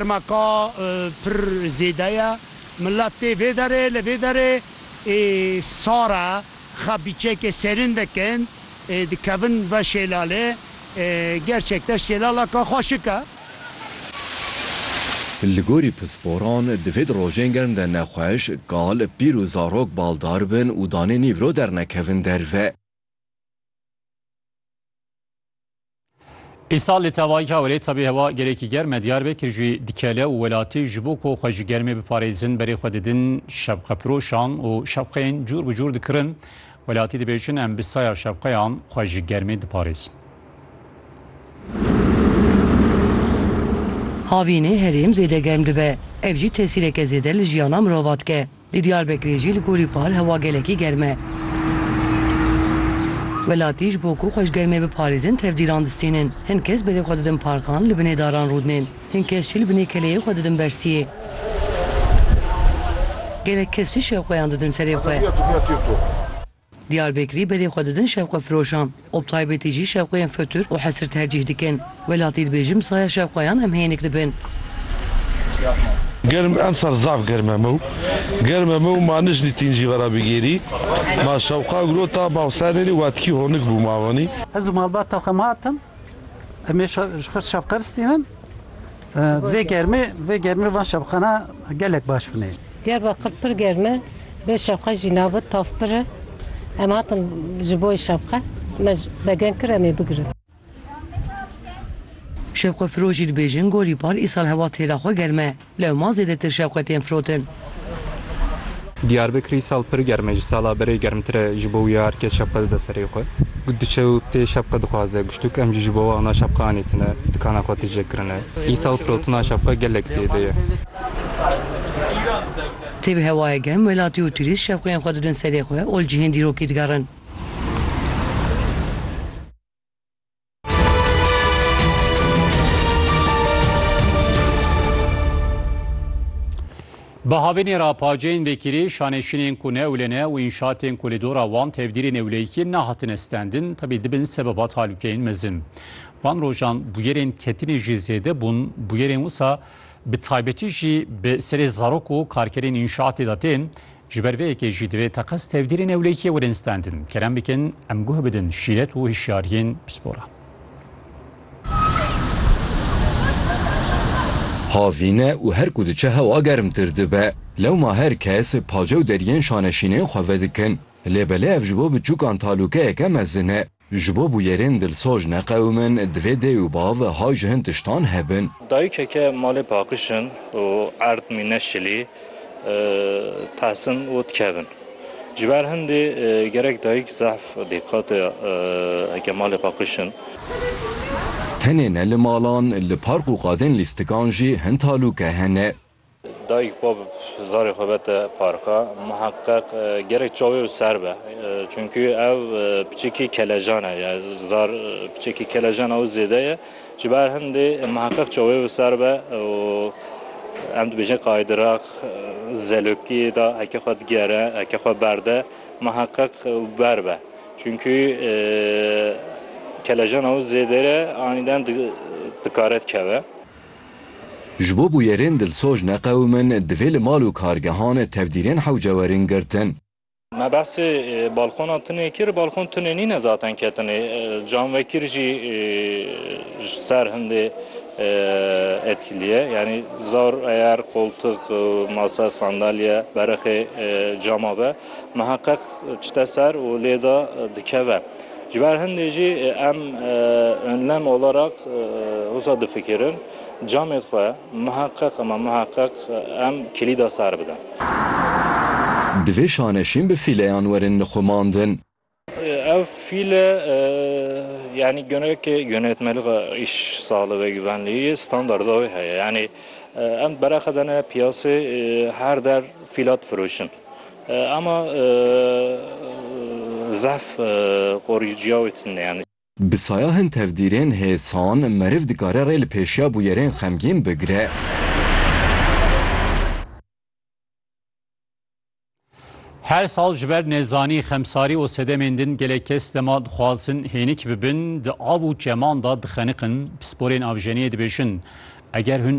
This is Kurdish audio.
Dema ka pir zêde ye, milet tê vê derê li vê derê ê sar e, xwe bîçekê serîn dikin, dikevin ve şêlalê, gerçek de şêlaleke xweşik e. Li gorî pisporan divê di rojên germ de nexweş, kal, pîr û zarok baldar bin û danê nîvro dernekevin derve. Îsal li tevayî Cawirê tevî hewa gelekî germ e Diyarbekir jî dikele û welatî ji bo ku xwe ji germê biparêzin berê xwe didin şevqefiroşan û şevqeyên cûr bi cûr dikirin. Welatî dibêjin em bi saya şevqeyan xwe ji germê diparêzin. Havînê herêm zêde germ dibe. Ev jî tesîreke zêde li jiyana mirovan dike. Di Diyarbekirê jî li gorî par hewa gelekî germ e. Welatî ji bo ku xwe ji germê biparêzin tevdîran distînin. Hin kes berê xwe didin parkan, li binê daran rûdinên. Hin kes jî li binê keleyê xwe didin bersiyê. Gelek kes jî şewqeyan didin serê xwe. Diyarbekirî berê xwe didin şevqefiroşan û bi taybetî jî şevqeyên fetûr û hesir tercîh dikin. Welatî dibêjin bi saya şevqeyan em hênik dibin. Germ emsal zaf germ e mew. Germ e mew ma nijnî tîn jî vera bigêrî. Ma şewqa girota bawsererî watkî honik bû ma wanî. Ez û malbata xwe ma hatin. Em ê ji xwe şevqe bistînin. Vê germê vê germê van şevqana gelek baş bûnê. Diyarbakir pir germ e, bê şevqe jî nabe, tav pir e. Em hatin ji bo şevqe me begen kir em ê bigirin. Şevqefiro jî dibêjin gorî par îsal hewa têra xwe germ e. Lewma zêdetir şevqe tên firotin. Diyarbekirî sal pir germ e, ji sala berê germtir e, ji bo wî ya her kes şapka dide serê xwe. Ku diçe û tê şapka dixwaze, guştûk em jî ji bo we ana şapka anîtine, dikana xwe tije kirine. Îsal firotina şapka gelek zêde ye. Tê bi hewayê germ welatî û turîst şapkeyên xwe didin serê xwe ol cihên dîrokî digerin. Bi havênê re paceyên vekirî, şanêşînên ku ne ewle ne û înşatên ku li dora wan tevdîrê newleyîkiyê nehatine standin tevî dibin sebeba talûkeyên mezin. Van rojan bûyerên ketinê jî zêde bûn, bûyerên wisa bi taybetî jî bi serê zarok û karkerên înşatê de tên, Ji ber vê yekê jî divê teqez tevgirê newlêkiyê werin standin. Kerem bikin em guh bidin şîret û hişyariyên pisporan. Havîn e û her ku diçe hewa germtir dibe. Lewma her kes pace û deriyên şaneşînên xwe vedikin. Lê belê ev ji bo biçûkan talûkeyeke mezin e. Ji bo bûyerên dilsoz neqewimin, divê dê û bav hay ji hin tiştan hebin. Dayikeke malê paqijin û erd mîne şilî tehsin û dikevin. Ji ber hindê gerek dayik zehf dîqate heke malê paqijin. Tenê ne li malan, li park û qadên lîstikan jî hin talûke hene. Dayik pa bi zarê xwe bete parka, miheqeq gerek çaw ê û ser be. Çunkî ew piçekî kelejan e, ya zar piçekî kelejan ew zêde ye. Ji ber hindê miheqeq çaw ê û ser be û em dibêjin qaydirak zelokî da heke xwe digere, heke xwe berde miheqeq ber be. Çunkî kelejan ew zêde re anîden dikare dikeve. Ji bo bûyerên dilsoz neqewimin, divê li mal û kargehan tevdîrên hewce werin girtin. Me behsê balkona tunê kir, balkon tunê nîne zaten ketinê. Canvekir jî ji ser hindê etkilî ye. Yanî zor eyer koltuk, masa, sandalye berixê cama ve miheqeq çite ser û lê de dikeve. Ji ber hindê jî em önlem olarak wisa difikirin, camê xwe miheqeq ama miheqeq em kilîda sar bidin. Divê şaneşîn bi fîleyan werin nixumandin. Ev fîle yanî gunekê gunetmeliga îş sali ve givenlî yê standarda wê heye. Yanî em berexe dene piyasê her der fîla difiroşin. Ama zehf qorîciya wê tune yani. Bi saya hin tevdîrên hêsan meriv dikare rê li pêşiya bûyerên xemgîn bigire. Her sal ji ber nezanî, xemsarî û sedemên din gelek kes dema dixwazin hênik bibin di av û çeman de dixeniqin. Pisporên avjeniyê dibêjin, eger hûn